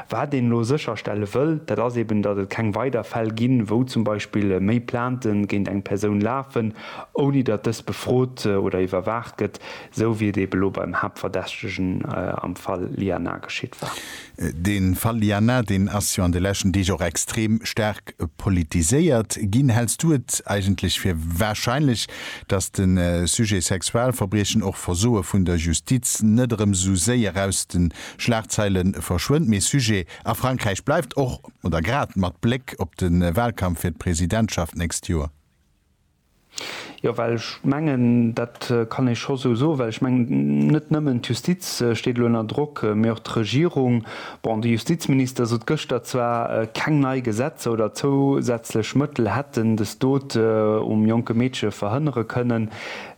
Wat een elo sécherstelle wëll, dat ass eben, datt et keng weider Fäll ginn, wou zum Beispill méi Plainte géint eng Persoun lafen, ouni datt dës befrot oder iwwerwaacht gëtt, esou wéi et eben elo beim Haaptverdächtegen am Fall Lianna geschitt war. De Fall Lianna, deen ass jo an de leschten Deeg och extrem staark politiséiert ginn. Häls du et eigentlech fir warscheinlech, datt de Sujet Sexualverbriechen, och Versoe vun der Justiz, net erëm esou séier aus de Schlagzeile verschwënnt, mee Sujet a Frankräich bleift, och oder grad mat Bléck op de Wahlkampf fir d'Presidentschaft d'nächst Joer. Jo, well ech mengen, dat kann ee scho sou soen, well ech mengen, net nëmmen d'Justiz steet elo ënner Drock, mee och d'Regierung. Bon, de Justizminister sot gëschter zwar, keng nei Gesetzer oder zousätzlech Mëttel hätten des Dot um jonke Meedche verhënnere kënnen,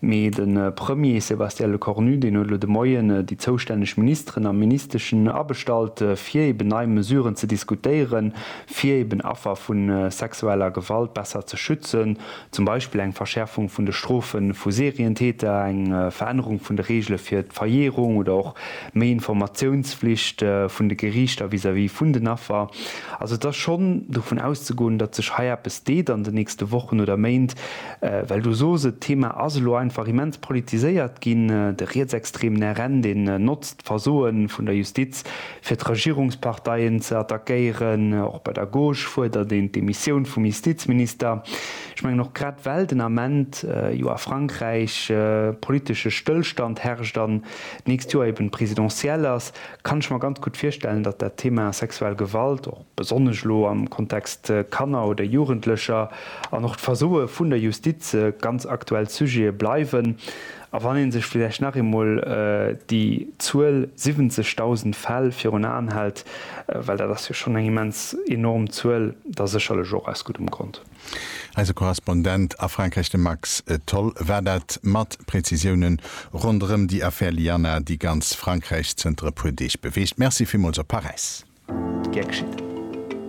Mee de Premier Sébastien Lecornu, deen huet elo de Moien déi zoustänneg Ministeren a Ministeschen abestallt, fir eben nei Mesuren ze diskutéieren, fir eben Affer vu sexueller Gewalt besser ze schützen, zum Beispill eng Verschäerfung vun de Strofe vu Serientäter, eng Verännerung vun de Reegele fir d'Verjährung oder och méi Informatiounsflicht vun de Geriichter vis-à-vis vun den Affer. Also et ass schonn dovun auszegoen, datt sech hei eppes deet an den nächste Wochen oder Méint. Well du sos, et d'Thema ass elo einfach immens politiséiert ginn, de rietsextremen RN, deen notzt d'Versoe vun der Justiz, fir d'Regierungsparteien ze attackéieren. Och bei der Gauche fuerdert een d'Demissioun vum Justizminister. Ech mengen och grad well den Ament jo a Frankräich politesche Stëllstand herrscht an d'nächst Joer eben d'Presidentielle ass, kann ech mer ganz gutt virstellen, datt dat Thema sexuell Gewalt och, besonnesch elo am Kontext Kanner oder Jugendlecher, an och d'Versoe vun der Justiz ganz aktuell Sujete bleiwen. A wann ee sech villäicht nach eemol déi Zuel 70.000 Fäll virun Aen hält, well dat ass jo schonn eng immens enorm Zuel, da sécherlech och aus guddem Grond. Eise Korrespondent a Frankräich, de Max Tholl, war dat mat Prezisiounen ronderëm déi Affär Lianna, déi ganz Frankräich zënter e puer Deeg beweegt. Merci villmools op Paräis. Gär geschitt.